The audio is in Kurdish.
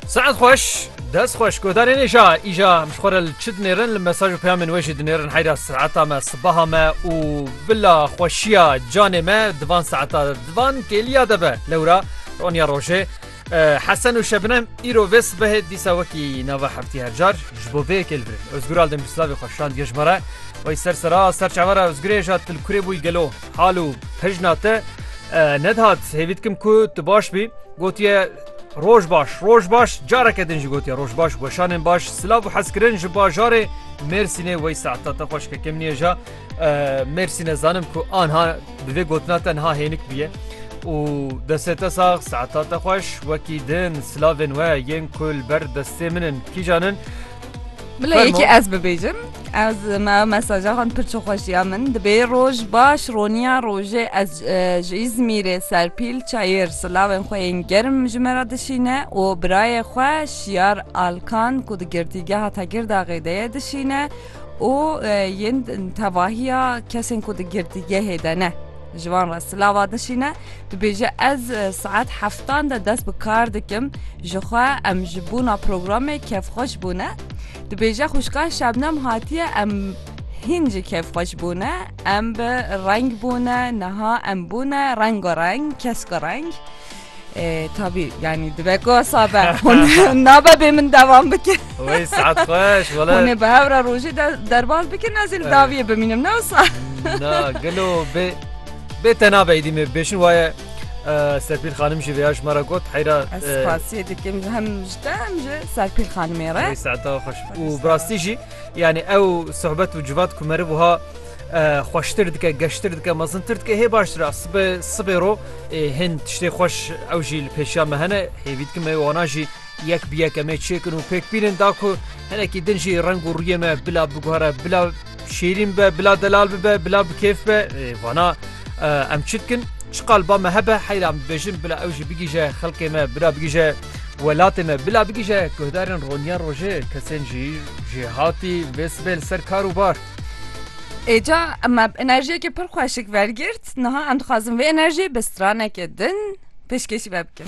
Saet xweş dest xweş godarê nêja îja em ji xwe re li çi dinêrin li mesaj û peyamên wê jî dinêrin heyra saeta me sibaha me û bila xweşiya canê me divan saeta divan kêliya de be lewra roniya rojê Hesen û şebinem îro vê sibehê dîsa wekî nava heftî hercar ji bo vê yekê li vir Özgür al demîrslavê xweşand gejmara Wey ser sera ser çavara Özgurê ja til kurê bûî gelo Hal û pejna te nedihat hêvî dikim ku tu baş bî. Gotiye Roj baş, roj baş, careke din jî gotiye roj baş, weşanên baş, silav û hezkirin ji bajarê Mêrsînê wey saeta te xweş ke kim nêja Mêrsîne zanim ku anha bi vê gotina te niha hênik bûye. û destê te sax saeta te xweş wekî din silavên we yên ku li ber destê min in kîjan in Bila Fermo. yekî ez bibêjim ez me mesaja xan pir çi xweş ya min dibê roj baş roniya rojê ez e, ji İzmîrê serpîl çayir silavên xwe yên germ ji me re dişîne û birayê xwe şiyar alkan ku di girtîgeha Tekirdagê de ye dişîne û e, yên tevahiya kesên ku di girtîgehê de ne ji wan re silava dişîne Dibêje ez saet heftan de dest bi kar dikim ji xwe em ji bûna programê kevxweş bûne. Dibêje xuşka şebnem hatiye em hîn ji kevxweş bûne em bi reng bûne niha em bûne rengo reng kesko reng. E, tabii yani dibek o sabe naba be min devam bikin. Oy saat hoş valla. Hone be hevra roji de derbaz bikin nazil daviye biminim ne olsa. Na gelo be Bê te nabe êdî me bêşin waye Serpîl xanim jî vêya ji me re got heyra Ez spasiyê dikim hem ji te hem ji Serpîl xanimê re. Herî saeta xweş û bi rastî jî yanî ew sohbet û civat ku meriv wiha xweştir dike geştir dike mezintir dike hê baştir e sibe sibê ro hên tiştê xweş ew jî li pêşiya me hene hêvî dikim me wana jî yek bi yek em ê çêkin û pêk bînin da ku hinekî din jî reng û rûyê me bila biguhere bila Şîrîn be, bila delal bibe, bila bi kêf be, vana em çi dikin? Çi qalba me hebe heyra em dibêjin bila ew jî bigîje xelkê me, bila bigîje welatê me, bila bigîje guhdarên roniya rojê, kesên jî jê hatî vê sibê li ser kar û bar. Êca me enerjiyekê pir xweşik vergirt, niha em dixwazin vê enerjiyê bi stranekê din pêşkêşî ve bikin.